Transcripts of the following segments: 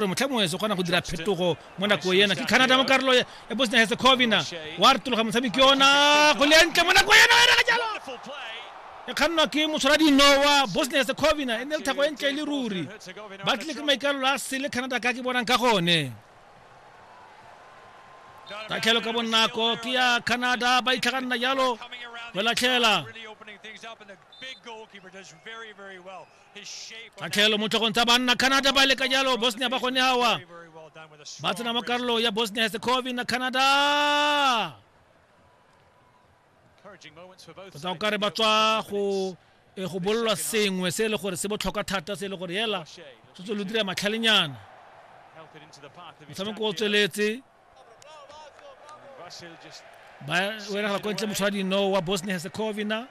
gore motlha mongwe se kgona go dira phetogo mo nako ena ke canada mo karolo ya bosnia herzegovina wa retologa motshameki ona go lentle mo nako ena ere ga jalo e kgannwa ke motshwara dinowa bosnia herzegovina e ne le thako e ntle e le ruri ba tlile ke maikalelo a sele canada ka ke bonang ka gone tatlhelo ka bonako ke ya canada ba itlhaganna jalo go latlhela tatlhelo mo tlhogong tsa banna canada ba leka jalo bosnia ba gone awa ba tsena mo karolo ya bosnia herzegovina canada tota o kare ba tswa go e go bololwa sengwe se e le gore se botlhokwa thata se e le gore hela se tse lo dira matlhalenyana motshameko o tsweletse ba weragala ko ntle motshwadi no wa bosnia herzegovina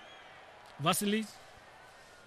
vasilic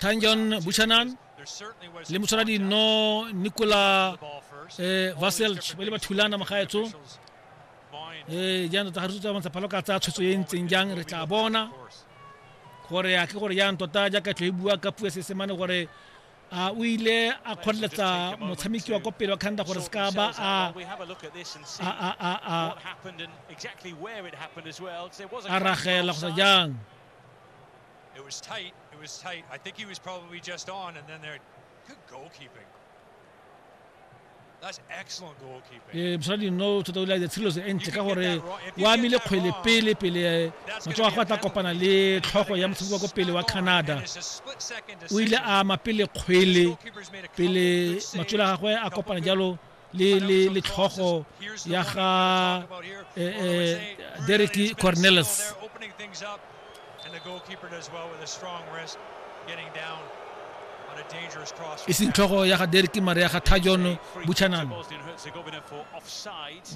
tanjon buchanan le motswala dino nicola eh, vaselch ba le ba thulana magaetso eh jaanong tota ga re tsutsa bontsha phalo ka tsaya tshwetso e ntseng jang re tla bona gore a ke gore jaanong tota jaaka tlho e bua ka puo ya seesemane gore a o ile a kgoreletsa motshameki wa kwa pele wa canada gore se ka ba a ragela kgotsa jang It was tight. It was tight. I think he was probably just on, and then there, good goalkeeping. ee mosadi nno o thota o ile a ditselo se entle ka gore o amile kgwele pele pele matsogo a go a tla kopana le tlhogo ya motshameko wa ko pele wa canada o ile a ama pele kgwele pele matswele a gagwe a kopana jalo le le le tlhogo ya ga eh, eh, Derek Cornelis e seng tlhogo ya ga derek mare ya ga tajon buchanan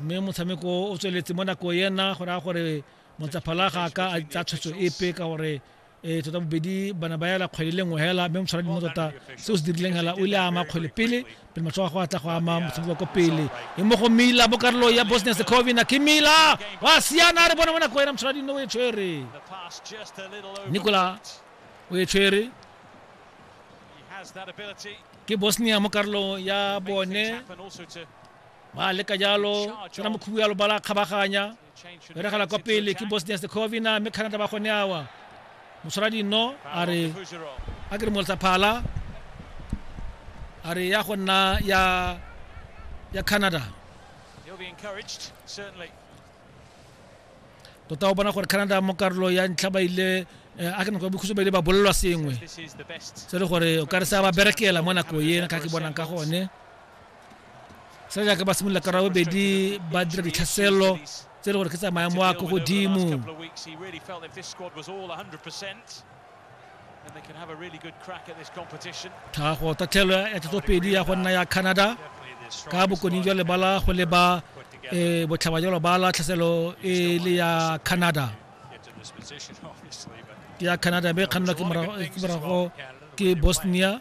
mme motshameko o tsweletse mo nako ena go raya gore montsaphalaga ka a tsa tshwetso epe ka gore e tota bobedi bana ba yala kgwele le nngwe hela mme motshwara dimo tota se o se dirileng hela o ile a ama kgwele pele pele matshwao a go atla go ama motshameko wa ko pele e mo go mila bo karolo ya bosnia secovina ke mila wa siana a re bona mona ko ena motshwara dino o e tshwere nicola o e tshwere ke bosnia mo karolong ya bone ba leka jalo tsena mokhubu ya lobala kgabaganya e regela kwa pele ke bosnia herzegovina mme canada ba gone awa motshwara dino a re a ke re molotsa phala a re ya go nna ya ya canada tota o bona gore canada mo karolo ya ntlha ba ile eh, a ke nako ya bokhutso ba ile ba bolelwa sengwe se le gore o ka re sa ba berekela mo nako ena ka ke bonang ka gone sa jaaka ba simolola ka rabobedi ba dira ditlhaselo tse e le gore ke tsa maemo a ko godimo tlhago tatlhelo ya tlotsopedi ya go nna ya canada ka bokone jwa lebala go leba um botlhaba jwa lobala tlhaselo e le ya canada ke ya canada mme e kgannwa ke morago ke bosnia